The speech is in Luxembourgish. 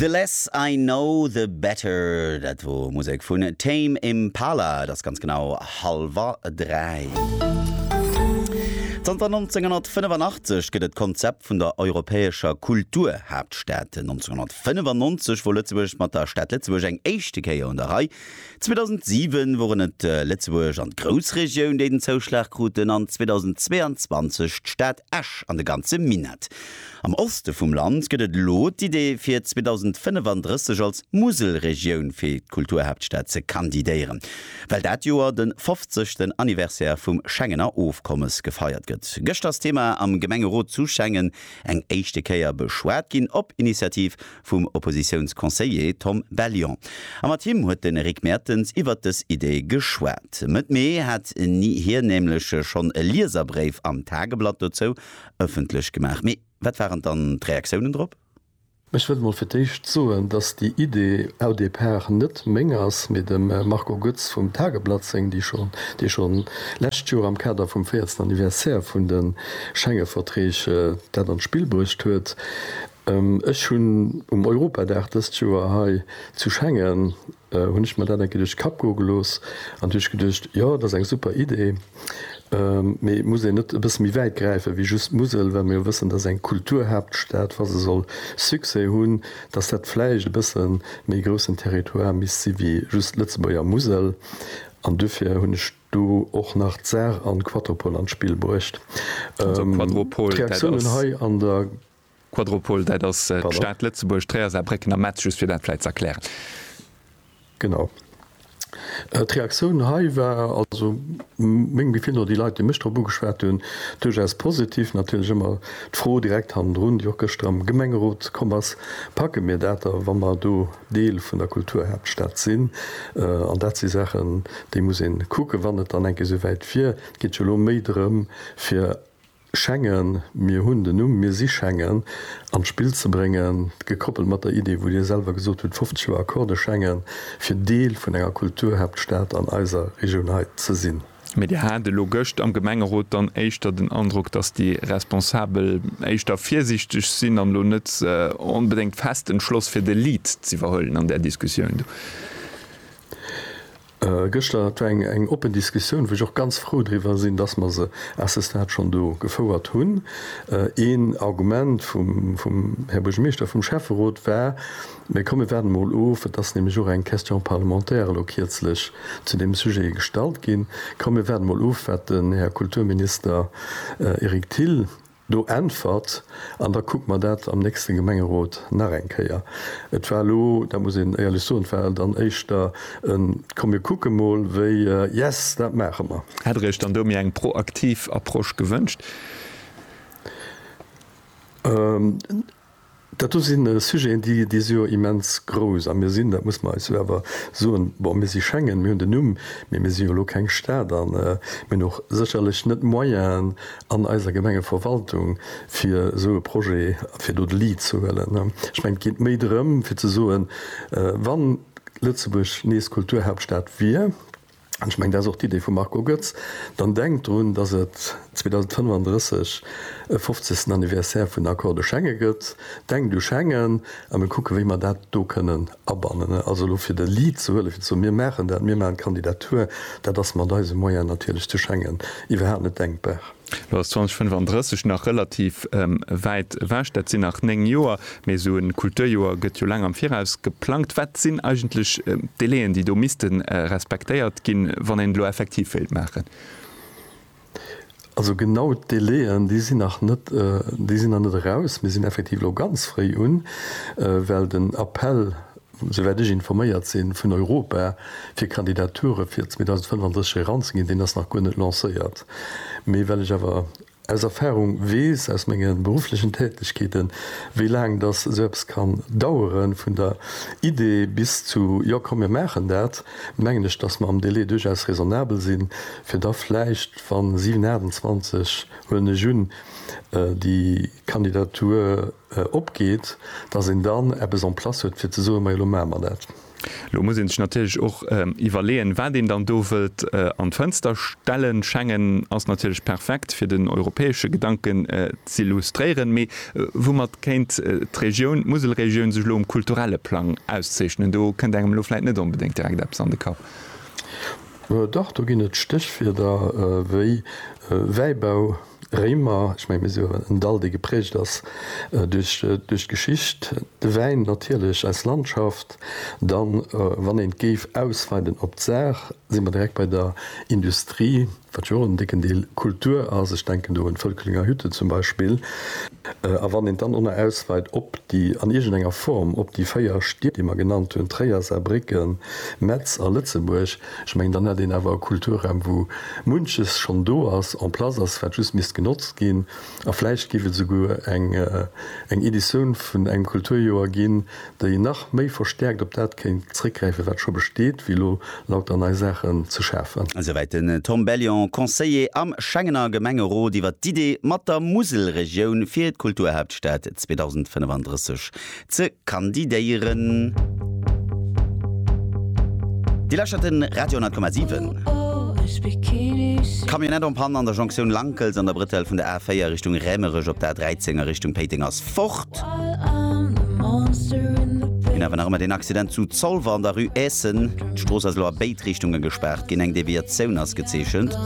The Less I Know The Better, dat wor Musek vun Tame Impala. Et ass ganz genau halwer 3. Zanter 1985 gëtt et d'Konzept vun der europäescher Kulturhaaptstad. 1995 wor Lëtzebuerg mat der Stad Lëtzebuerg eng éischte Kéier un der Rei. 2007 woren et Lëtzebuerg an d'Groussregioun, déi den Zouschlag kruten, an 2022 d'Stad Esch an de ganze Minett. Am Oste vum Land gëtt et elo d'Idee fir 2035 als Muselregioun fir d'Kulturhaaptstad ze kandidéieren. Well dat Joer de 50. Anniversaire vum Schengener Ofkommes gefeiert gëtt, gëscht ass d'Thema am Gemengerot zu Schengen eng éischte Kéier beschwat ginn, op Initiativ vum Oppositiounsconseiller Tom Bellion. A mat him huet de Rick Mertens iwwert dës Idee geschwat. Mëtt Mee hat hien nämlech schonn e Lieserbréif am Tageblatt dozou ëffentlech gemaach. Mee wat waren dann d'Reaktiounen drop? Ech wëll mol fir d'éischt soen, datt déi Idee au départ net meng ass, mee dem Marco Goetz vum Tageblatt seng, déi schonn, dee schonn lescht Joer am Kader vum véiertsten Anniversaire vun de Schengeverträg dat an d'Spill bruecht huet. Ech hunn um Europadag dëst Joer hei zu Schengen Hunn ech mer dat eng Kéier duerch Kapp goe gelooss an hu ech geduecht, jo, dat ass eng super Idee, mee muss een net e bësse méi wäit gräifen, wéi just d'Musel, well mer jo wëssen, dass eng Kulturhaaptstad, wa se soll Succès hunn, dass dat vläicht e bësse méi groussen Territoire misst si wéi just d'Lëtzebuerger Musel. An duerfir hunn ech do och nach d'Saar an d'Quatropol an d'Spill bruecht. D'Reaktiounen hei an der. Quadropol, dat ass d'Stad Lëtzebuerg, Tréier, Saarbrécken a Metz, just fir dat vläit ze erklären. Genau. D'Reaktioun hei war, also mengem Gefill no, déi Leit, déi mech drop ugeschwat hunn, duerchaus positiv. Natierlech ëmmer d'Fro direkt hannendrun, déi och gëschter am Gemengerot komm ass, Packe mir dat da, wa mer do Deel vun der Kulturhaaptstad sinn? An dat si Saachen, déi muss ee kucken, wann et dann eng Kéier esouwäit wier. Et geet jo elo méi drëm, fir Schengen, mir hunn den Numm, mir si Schengen, an d'Spill ze bréngen, gekoppelt mat der Idee, wou Dir selwer gesot hutt, 50 Joer Accordé Schengen, fir Deel vun enger Kulturhaaptstad an eiser Regioun hei ze sinn. Mee Dir hat elo gëscht am Gemengerot dann éischter den Androck, dass déi Responsabel éischter virsiichteg sinn an elo net onbedéngt fest entschloss fir de Lead z'iwwerhuelen an där Diskussioun do? Gëschter, et war eng oppen Diskussioun, wou ech och ganz frou driwwer sinn, dass mer se à ce stade schonn do gefouert hunn. Een Argument vum Här Buergermeeschter, vum Schäfferot war, Mä komm, mir waarden emol of, et ass nämlech och eng Question parlementaire elo kierzlech zu deem Sujet gestallt ginn, komm, mir waarden emol of, wat den Här Kulturminister Eric Thill, Do äntwert, an da kucke mer dat am nächste Gemengerot nach eng Kéier. Et war elo, dat muss een éierlech soen, et war dann éischter e komm mir kucke mol wéi yes, dat maache mer. Hätt Der Iech dann do méi eng proaktiv Approche gewënscht? Dat do si Sujeten, déi, déi si jo immens grouss. A mir sinn, dat muss mer eis jo awer soen, bon, mir si Schengen, mir hunn den Numm, mee mir si jo elo keng Stad a mir hunn och sécherlech net d'Moyenen an eiser Gemengeverwaltung, fir esou e Projet, fir do de Lead ze huelen. Ech mengen, et geet méi drëm, fir ze soen, Wa Lëtzebuerg nees Kulturhauptstad wier, an ech mengen, dat ass och d'Idee vum Marco Goetz, dann denkt drun, datt et 2035 e fofzegsten Anniversaire vun den Accords de Schengen gëtt, denkt u Schengen a mir kucken, wéi mer dat do kënnen abannen. Also elo fir de Lead ze huelen, fir ze soen, mir maachen dat, mir maachen d'Kandidatur, dat ass mat eise Moyene natierlech zu Schengen iwwerhaapt net denkbar. Lo ass 2035 nach relativ wäit ewech, dat sinn nach néng Joer, mee esou e Kulturjoer gëtt jo laang am Viraus geplangt. Wat sinn eigentlech d'Délaiën, déi do misste respektéiert ginn, wann een et elo effektiv wéilt maachen? Also genau d'Délaiën, déi sinn nach net, déi sinn nach net eraus. Mir sinn effektiv elo ganz fréi un, well den Appell souwäit ech informéiert sinn, vun Europa fir Kandidature fir 2035 eranzeginn, deen ass nach guer net lancéiert. Mee well ech awer aus Erfahrung weess, aus menge berufflechen Tätegkeeten, wéi laang datt esou eppes kann daueren, vun der Idee bis zu jo komm mir maachen dat, mengen ech, datt mer am Délai duerchaus raisonnabel sinn, fir da vläicht, wann 7, 28, huelen ech un, déi Kandidatur. opgeet, datt een dann eppes en place huet fir ze soen, majo, elo maache mer dat. Elo muss ee sech natierlech och iwwerleeën, wat een dann do wëllt an d'Fënster stellen. Schengen ass natierlech perfekt, fir den europäesche Gedanken z'illustréieren. Mee woumat kéint d'Regioun, d'Muselregioun, sech elo um kulturelle Plang auszeechnen? Do kënnt engem elo vläit net onbedéngt direkt eppes an de Kapp. Doch, do ginn et Stéchwierder wéi Wäibau. Réimer, ech mengen mir soen en Dall dee geprägt ass duerch duerch d'Geschicht, de Wäin natierlech als Landschaft, dann wann een et géif ausweiden op d'Saach si mer direkt bei der Industrie, wat jo och en décken Deel Kultur ass, ech denken do un d'Völklinger Hütte zum Beispill, a wann een et dann och nach ausweit op déi an iergend enger Form op déi véier Stied déi mer genannt hunn, Tréier, Saarbrécken, Metz a Lëtzebuerg, Ech mengen, dann hätt een awer e Kulturraum, wou munches schonn do ass, en place ass, wat just misst genotzt ginn. A vläicht géif et esouguer eng Editioun vun engem Kulturjoer ginn, déi nach méi verstäerkt op dat kéint zréckgräifen, wat scho besteet, wéi elo lauter nei Saachen ze schafen. Esouwäit den Tom Bellion, Conseiller am Schengener Gemengerot, iwwer d'Idee mat der Muselregioun fir d'Kulturhaaptstad 2035. ze kandidéieren. Dir lauschtert de Radio 100,7. Camionette en panne an der Jonktioun Lankels an der Brëtell vun der A4 Richtung Rämerech op der A13 a Richtung Péiteng ass fort. Mir hawen nach ëmmer deen Accident zu Zolwer an der Rue Eessen. D'Strooss ass elo a béid Richtunge gespaart ginn, eng Deviatioun ass gezeechent.